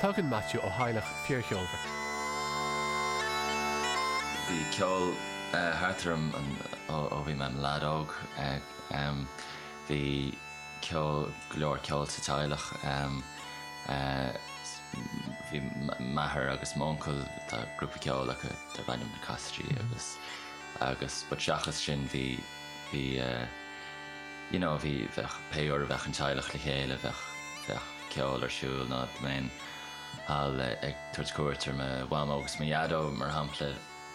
Tagann Maitiú ó theaghlach fíorcheolmhar. Bhí ceol thart orm ó bhí mé im lead óg. Bhí ceol, go leor ceol sa teaghlach. Bhí m'athair agus m'uncail, tá grúpa ceoil acu darb ainm na Casaidigh eh but seachas sin bhí, bhí eh, you know bhí, bheadh, pé uair a bheadh an teaghlach le chéile bheadh, bheadh ceol ar siúl nó dá mbeinn thall ag tabhairt cuairt ar mo Mhamó agus mo Dhaideo mar shampla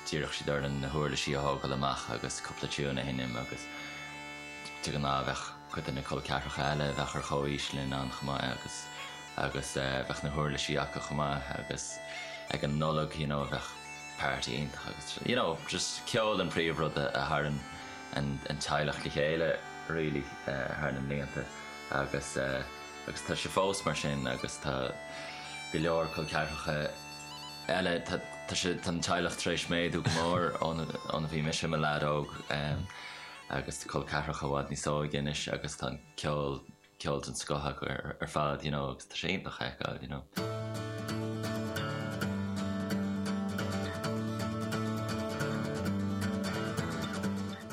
d'iarrfadh siad orainn na huirlisí a thógáil amach agus cúpla tiúin a sheinm agus de ghnáth bheadh cuid de na col ceathracha eile a bheadh ar chomhaois linn ann chomh maith agus, agus eh bheadh na huirlisí acu chomh maith agus ag an Nollaig you know bheadh party iontach agus you know just ceol an príomhrud a tharra an teaghlach le chéile really thar na mblianta agus agus tá sé fós mar sin agus tá go leor col ceathracha eile tá tá sé tá an teaghlach tar éis méadú go mór ó, óna bhí mise i mo leaid óg agus col ceathracha i bhfad níos óige anois agus tá an ceol ceol den scoth acu ar fad you know agus tá sé iontach a fheiceáil you know.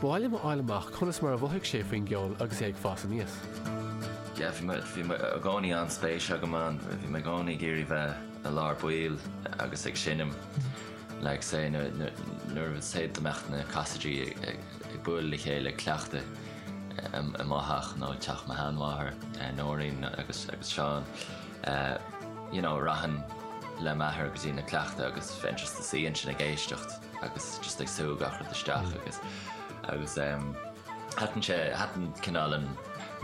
B'áil liom a fháil amach conas mar a mhothaigh sé faoin gceol agus é ag fás aníos. Yeah, bhí mé- bhí mé i gcónaí an-spéis agam ann, bhí mé i gcónaí ag iarraidh bheith i lár baill agus ag seinm like say nuair nuair nuair a, say dá mbeadh na Casaidigh ag ag bualadh le chéile ag cleachtadh. amach nó i dteach mo sheanmháthar, Nóirín agus Seán, you know, rachainn le m'athair go dtí na cleachtaí agus bheinn just i mo shuí ansin ag éisteacht agus just ag sú gach rud isteach agus agus em thaitin sé thaitin cineál an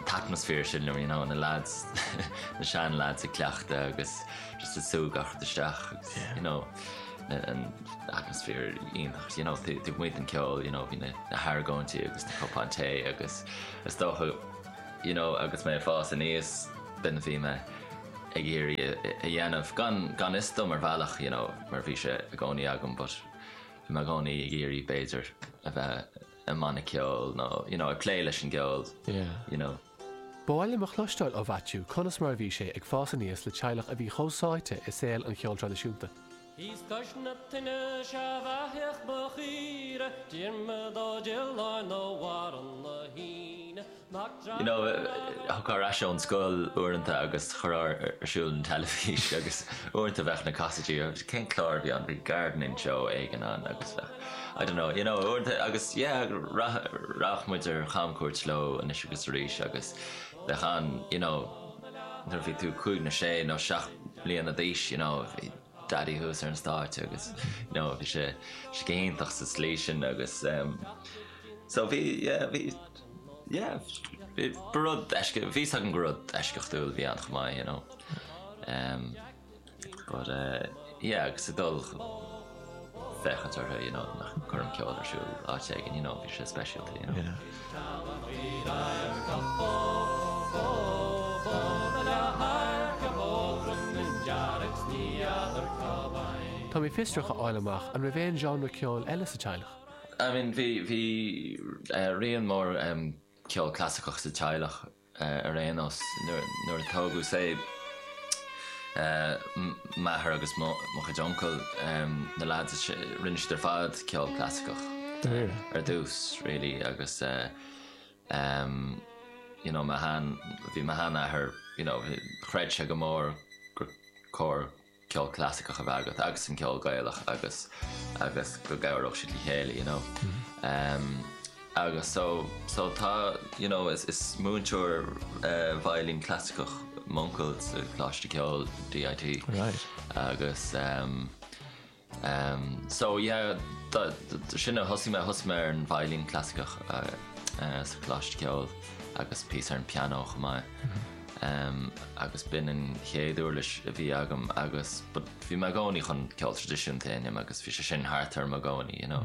t-atmaisféar sin liom, you know, na lads na sean lads ag cleachtadh agus just ag súil gach rud isteach agus, you know. an t-atmaisféar iontach you know taobh amuigh den ceol you know bhí na na hargóintí agus na cupáin tae agus is dócha you know agus mé ag fás aníos b'in a bhí mé ag iarraidh a a dhéanamh gan gan fhios dom ar bhealach you know mar bhí sé i gcónaí agam but bhí mé i gcónaí ag iarraidh b'fhéidir a bheith i mbanna ceoil nó you know ag plé leis an gceol yeah you know. B'áil liom a chloisteáil ó Mhaitiú conas mar a bhí sé ag fás aníos le teaghlach a bhí chomh sáite i saol an cheoil traidisiúnta. You know, thiocfá ar ais ón scoil uaireanta agus chuirfeá ar siúl an teilifís agus uaireanta bheadh na Casaidigh, cén clár a bhí ann, bhí gardening show éigin ann agus bheadh. I don't know, you know, agus yeah, rachadh muid ar chamchuairt leo anois agus arís agus bheadh an, you know, nuair a bhí tú cúig nó sé nó seacht mbliana d'aois, you know, bhí Daidí thuas ar an stáitse agus, you know, bhí sé go hiontach sa tslí sin agus em so bhí, sea, bhí, sea, ba rud eisceacht, bhí fhios agam go raibh rud eisceachtúil a bhí ann chomh maith, you know. But eh yeah agus ag dul féachaint orthu you know nó ag cur an ceol ar siúl áit éigin you know bhí sé speisialta you know. Tá mé fiosrach a fháil amach an raibh aon genre ceoil eile sa teaghlach? I mean bhí bhí eh raon mór eh ceol clasaiceach sa teaghlach. ar aon nós, nuair a tógadh say m'athair agus mo chuid uncal, na lads, rinne siad ar fad ceol clasaiceach ar dtús really agus you know mo shean, bhí mo sheanathair, you know chreid sé go mór gur cóir ceol clasaiceach a bheith agat agus an ceol Gaelach agus agus go gcabhródh siad le chéile you know. Agus so so tá you know is is múinteoir veidhlín clasaiceach m'uncail sa Choláiste Ceoil DIT. Right. Agus Umm so yeah so sin a thosaigh mé, thosaigh mé ar an veidhlín clasaiceach sa Choláiste Ceoil agus píosa ar an pianó chomh maith. Umm agus b'in an chéad uirlis a bhí agam agus but bhí mé i gcónaí chun ceol traidisiúnta a sheinm agus bhí sé sin thart orm i gcónaí you know.